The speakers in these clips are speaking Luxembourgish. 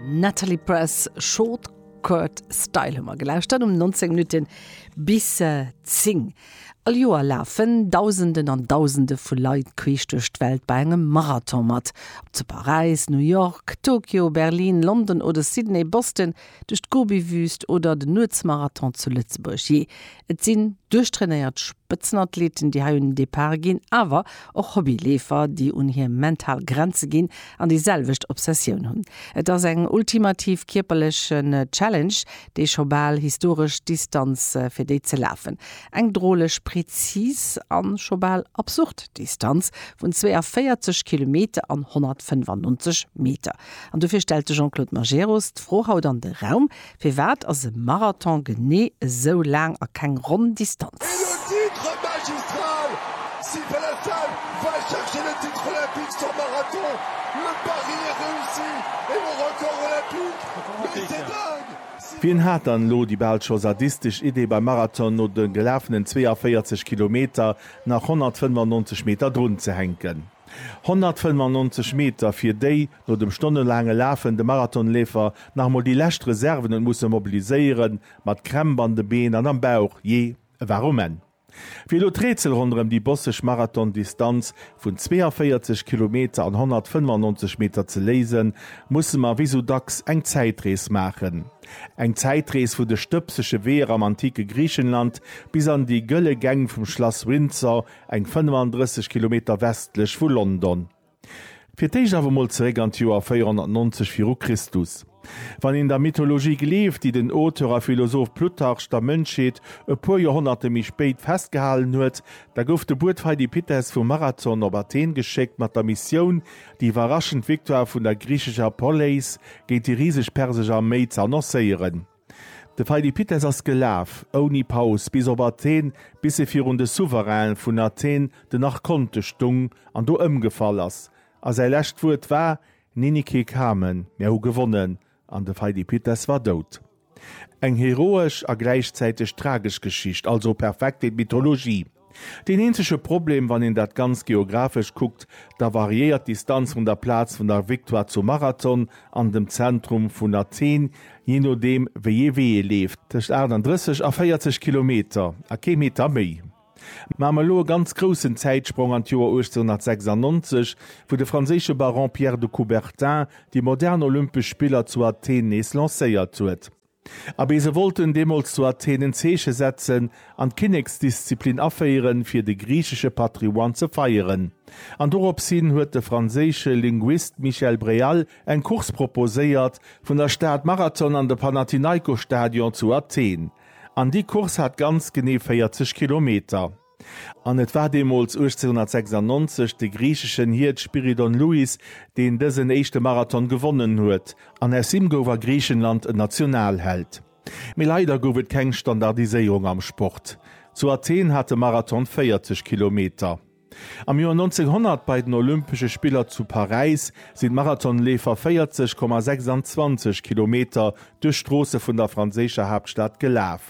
Natalie Press Short Skirt Style hu mer gelauscht dat um 19 Minuten bis 10. Äh, All Joer lafen Dausenden an Dausende vu Leit queesch duerch d'Welt bei engem Marathon mat. Ob zu Paräis, New York, Tokio, Berlin, London oder Sydney, Boston, duerch d'Gobi-Wüst oder den Nuetsmarathon zu Lëtzebuerg. Jee, et sinn duerchtrainéiert Spëtzenathleten, déi hei un den Depart ginn, awer och Hobby-Leefer, déi un hir mental Grenze ginn an déi selwecht Obsessioun hunn. Et ass eng ultimativ kierperleche Challenge, déi scho bal historesch Distanz fir déi ze lafen. Eng droleg prezis an scho bal absurd Distanz vun 42 Kilometer an 195 Meter. An dofir stellt de Jean-Claude Majerus d'Fro haut an de Raum, Firwat ass e Marathon genee esou laang a keng ronn Distanz? Wien hat dann elo déi bal scho sadistesch Idee, beim Marathon no de gelafenen 42 Kilometer nach 195 Meter drunzehänken? 195 Meter, fir déi no dem stonnelaange Lafen de Marathonleefer nach emol déi lescht Reserven huet musse mobiliséieren, mat Krämp an de Been an am Bauch, jee, e war um Enn. Wéi elo d'Rätsel ronderëm déi bosseg Marathondistanz vun 42 Kilometer an 195 Meter ze léisen, musse mer wéi sou dacks eng Zäitrees maachen. Eng Zäitrees vu de stëbsege Weeër am antike Griichenland bis an déi gëlle Gäng vum Schlass Windsor eng 35 Kilometer westlech vu London. Fir d'éischt awer mol zeréck an d'Joer 490 viru Christus. Wann een der Mythologie gleeft, déi den Auteur a Philosoph Plutarch der Mënschheet e puer Joerhonnerte méi spéit festgehalen huet, da gouf de Buet Pheidipites vu Marathon op Athen geschéckt mat der Missioun, déi iwwerraschend Victoire vun der griichescher Poleis géint déi riseg persesch Arméi ze annoncéieren. De Pheidipites ass gelaf, ouni Paus, bis op Athen, bis e virun de Souverain vun Athen, den Archonte, stung an do ëmgefall ass. A säi lescht Wuert war, Nenice kamen, mär hu gewonnen, an de Pheidipites war dout. Eng heroesch a gläichzäiteg tragesch Geschicht, also perfekt fir d'Mythologie. Deen eenzege Problem, wann een dat Ganzt geographesch kuckt, da variéiert d'Distanz vun der Plaz vun der Victoire zum Marathon an dem Zentrum vun Athen, jee nodeem wéi ee Wee ee leeft, tëscht 38 a 40 Kilometer a kee Meter méi. Maache mer elo e ganz groussen Zäitsprong an d'Joer 1896, wou de franséische Baron Pierre de Coubertin déi modern Olympesch Spiller zu Athen nees lancéiert huet. Abee, se wollten deemools zu Athen en Zeeche setzen an d'Kinneksdisziplin aféieren, fir de griichesche Patrimoine ze feieren. An dorops hin huet de franséische Linguist Michel Bréal eng Course proposéiert, vun der Stad Marathon an de Panathinaikosstadion zu Athen. An déi Course hat ganz genee 40 Kilometer. An et war deemools 1896 de griicheschen Hiert Spyridon Louis, deen dësen éischte Marathon gewonnen huet, an aus him gouf a Griichenland en Nationalheld. Mee leider gouf et keng Standardiséierung am Sport. Zu Athen hat de Marathon 40 Kilometer. Am Joer 1900 bei den Olympesche Spiller zu Paräis sinn d'Marathonleefer 40,26 Kilometer duerch d'Stroosse vun der franséischer Haaptstad gelaf.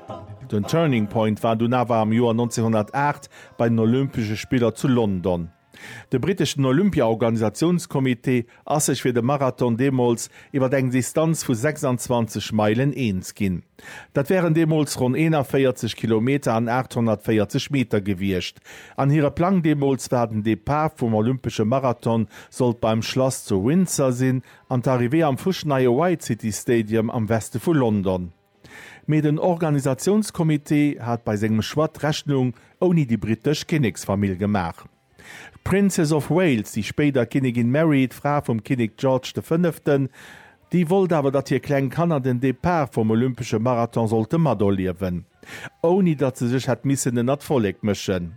Den Turning Point war dunn awer am Joer 1908 bei den Olympesche Spiller zu London. De britteschen Olympia-Organisatiounscomité ass sech fir de Marathon deemools iwwer eng Distanz vu 26 Meilen eens ginn. Dat wären deemools ronn 41 Kilometer an 840 Meter gewiescht an hire Plang deemools war den Depart vum Olympesche Marathon sollt beim Schlass zu Windsor sinn an d'Arrivée am fuschneie White City Stadium am Weste vu London. Mee den Organisatiounscomité hat bei sengem Choix d'Rechnung ouni déi brittesch Kinneksfamill gemaach. D'Princess of Wales, déi spéider Kinnigin Mary, d'Fra vum Kinnek George de Fënneften, déi wollt awer datt hir kleng Kanner den Depart vum olympesche Marathon sollte materliewen, ouni datt se sech hätt missen ënnert d'Vollek mëschen.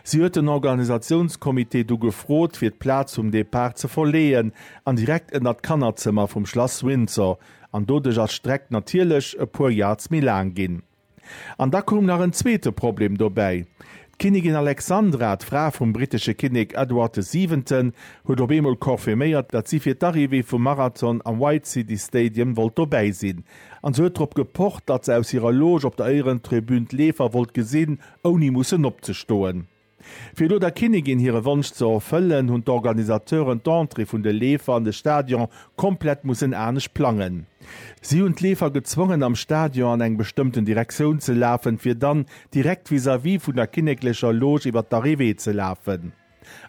Si huet den Organisatiounscomité du gefrot, fir d'Plaz vum Depart ze verleeën an direkt ënner d'Kannerzëmmer vum Schlass Windsor, an doduerch ass d'Streck natierlech e puer Yards méi laang ginn. An da koum nach en zweete Problem dobäi, D'Kinnigin Alexandra, d'Fra vum brittesche Kinnek Edward de Siwenten, huet op eemol confirméiert, datt si fir d'Arrivée vum Marathon am White City Stadium wollt dobäi sinn, an se huet drop gepocht, datt se aus hirer Loge op der Éierentribün d'Leefer wollt gesinn ouni mussen opzestoen. Fir elo der Kinnigin hire Wonsch ze erfëllen, hunn d'Organisateuren d'Entrée vun de Leefer an de Stadion komplett mussen anescht plangen. Si hunn d'Leefer gezwongen, am Stadion an eng bestëmmten Direktioun ze lafen, fir dann direkt vis-à-vis vun der kinneklecher Loge iwwer d'Arrivée ze lafen.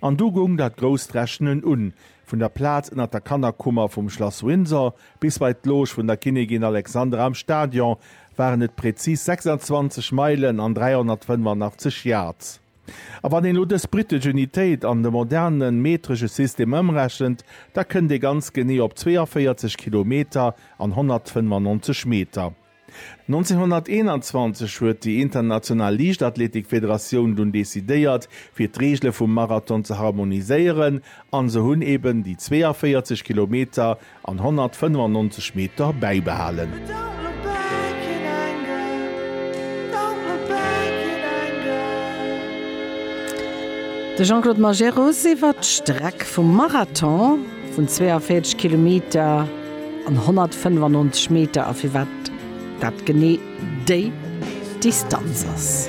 An du goung dat grousst Rechnen un, vun der Plaz ënnert der Kannerkummer vum Schlass Windsor bis bei d'Loge vun der Kinnigin Alexandra am Stadion waren et präzis 26 Meilen an 385 Yards. A wann een elo dës britesch Unitéit an de moderne metresche System ëmrechent, da kënnt ee ganz genee op 42 Kilometer an 195 Meter. 1921 huet déi international Liichtathletikfederatioun dunn decidéiert, fir d'Reegele vum Marathon ze harmoniséieren, an se hunn eben déi 42 Kilometer an 195 Meter bäibehalen. De Jean-Claude Majerus iwwert d'Streck vum Marathon vun 42 Kilometer. An 195 Meter, a firwat dat genee déi Distanz ass.